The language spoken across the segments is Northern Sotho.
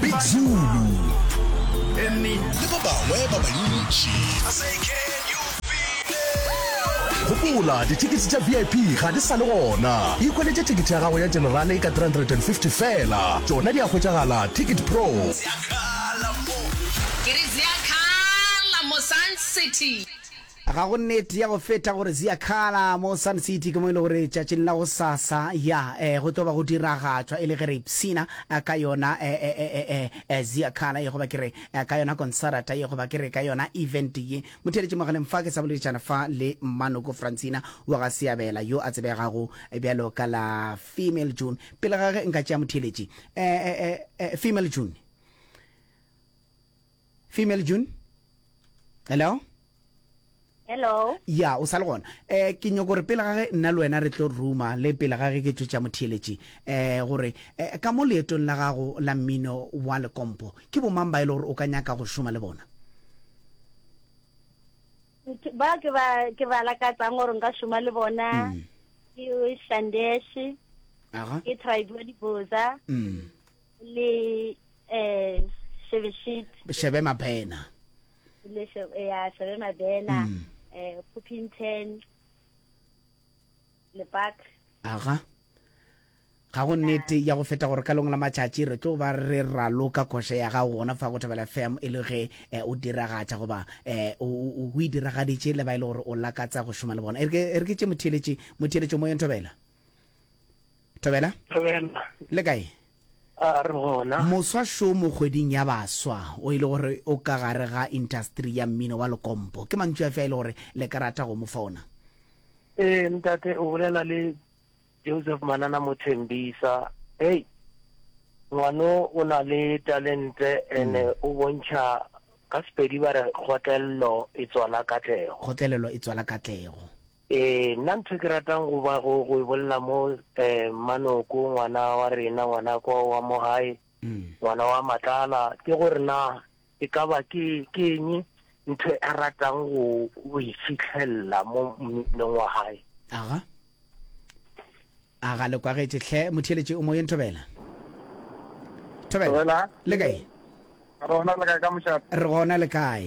Big Zulu le ba bangwe ba bantši. Gopola, dithekete tša VIP ga di sa le gona. Ikhweletše thekete ya gago ya Generale ka 350 feela. Tšona di a hwetšagala Ticket Pro. Ke re zea khala mo Sun City. Ga go nnete ya go feta gore Ziakala mo Sun City ke mo e lego gore tšatšing la go sasa, ya, eh, go tlo ba go diragatšwa e le ge re ipshina eh, ka yona eh, eh, eh, eh, eh, eh, Ziakala ye goba ke re eh, ka yona konsarata ye goba ke re ka yona event ye. Motheeletši mogaleng fa ke sa boleditšana fa le Mmanoko Francina wa ga Seabela yo a tsebegago bjalo ka la Female June. Pele ga ge nka tšea motheeletši, eh, eh, eh, eh, Female June. female june hello hello ya o sa le gona um ke nyoko gore pele gage nna le wena re tlo ruma le pele gage ke tšotša motheeletši um gore um ka mo leetong la gago la mmino wa lekompo ke bomang ba e le gore o ka nyaka go šoma le bona ba ke ba ke ba lakatsang gore nka šoma le bona mm. ke shandeshe ke tribe wa diboza mm. le eh shebe shit shebe mabena le shebe eh, ya shebe mabena mm. eh pupinten le park aga ga go nnete ya go feta gore ka lengwe la matšatši re tlo ba re raloka kgoše ya gago gona fa go thabela fm e le ge eh, o diragatša goba um o e diragaditše le ba e le gore o lakatsa go šoma le bona e re ke tše motheeletše motheeletšo mo yentobela thobela thobela le kae a re gona moswa show mo kgweding ya baswa o ile e gore o ka gare ga industry ya mmino wa lekompo ke mantšu a fe a ile e gore le ka rata go mo fa ona ee ntate o bolela le joseph manana mothembisa hei ngwano o na le talente ene mm. o bontšha ka sepedi ba re kgotlelelo e tswala katlego kgotlelelo e tswala katlego Ee, nna ntho e ke ratang go ba go go e bolela mo um Manoko ngwana wa rena ngwana kwa wa mo gae ngwana wa Matlala ke gore na e ka ba ke ke eng ntho a ratang go go e fitlhelela mo mminong wa gae aga aga le kwagetše hle motheeletše o moyeng thobela thobela Thobela. le kae Rona le kae ka mošate? re gona le kae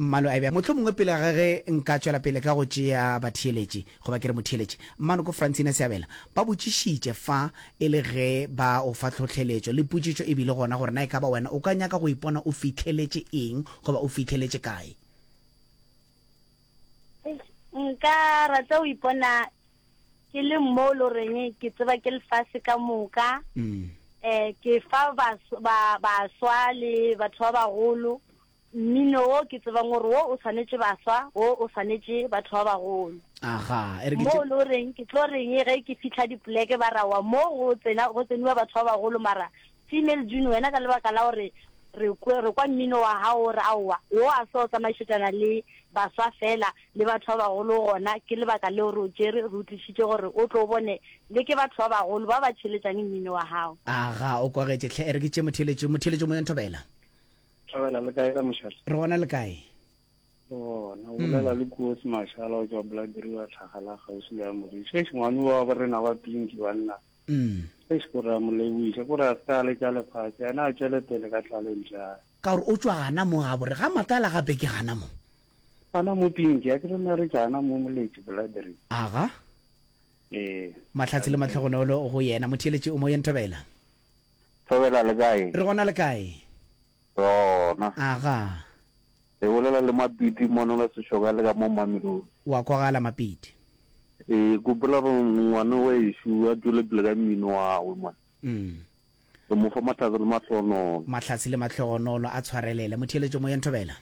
Mmalwa ebja mohlomongwe pele ga ge nka tšwela pele ka go tšea batheeletši, goba ke re motheeletši, Mmanoko Francina Seabela, ba botšišitše fa e le ge ba o fa tlhohleletšo le potšišo e bile gona gore na e ka ba wena o ka nyaka go ipona o fihleletše eng goba o fihleletše kae. Eish, nka rata go ipona ke le mo e lo reng ke tseba ke lefase ka moka, um ke fa bas, ba, baswa le batho ba bagolo Mmino wo ke tsebang gore wo o swanetše baswa, wo o swanetše batho ba bagolo. Aga, e re ke Mo tše. lo reng ke tlo reng ge ke fihla dipoleke ba ra wa mo go tsena go tseniwa batho ba bagolo mara female June wena ka lebaka la gore re kwe re kwa mmino wa hao o re aowa wo a so tsamaešetšana le baswa fela le batho ba bagolo gona ke lebaka leo re o tšere re utlišitše gore o tlo bone le ke batho ba bagolo ba ba tšheletšang mmino wa hao. Aga, o kwagetše hle, e re ke tše motheeletšo, motheeletšo mo yo nthobela. Thabela le kae ka mošala? Re gona le kae? bona o bolela le kuotsi mashala o tswa bladiri wa tlhagala gausi le ya moriša e sengwane wa ba rena ba pinki banna e se kore a mo leboiša kore a se ka le tša lefatshe ena a tšwele pele ka tlaleng jang ka gore o tswa gana mo ga bore ga matala gape ke gana mo gana mo pinki a ke re na re jana mo moletši bladiri aga ee matlhatsi le matlhogonolo go yena motheeletši o mo yenthabela Thobela le kae? Re gona le kae? Re gona. Aga. Le bolela le Mapiti mono le Seshoka le ka mo Mamelodi. Wa kwagala Mapiti. Ke gopola gore ngwane wa ešo a tšwele pele ka mmino wawe mone. Umm. Re mo fa mahlatse le mahlogonolo. Mahlatse le mahlogonolo a tshwarelele. Motheeletšo moyeng Thobela.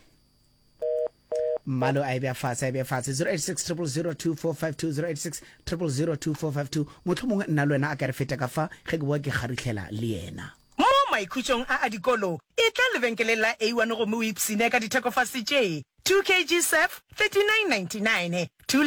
Mmalo a e bea fase, a e bea fase. 0860002520, 0860002520, Mohlomongwe nna le wena a ka re feta ka fa, ge ke bowa ke kgaruthlela le yena. Mo maikhutšong a a dikolo, etla lebenkeleng la A1 gomme o ipshine ka ditheko fase tše, 2 kg surf, 39.99, 2 litre,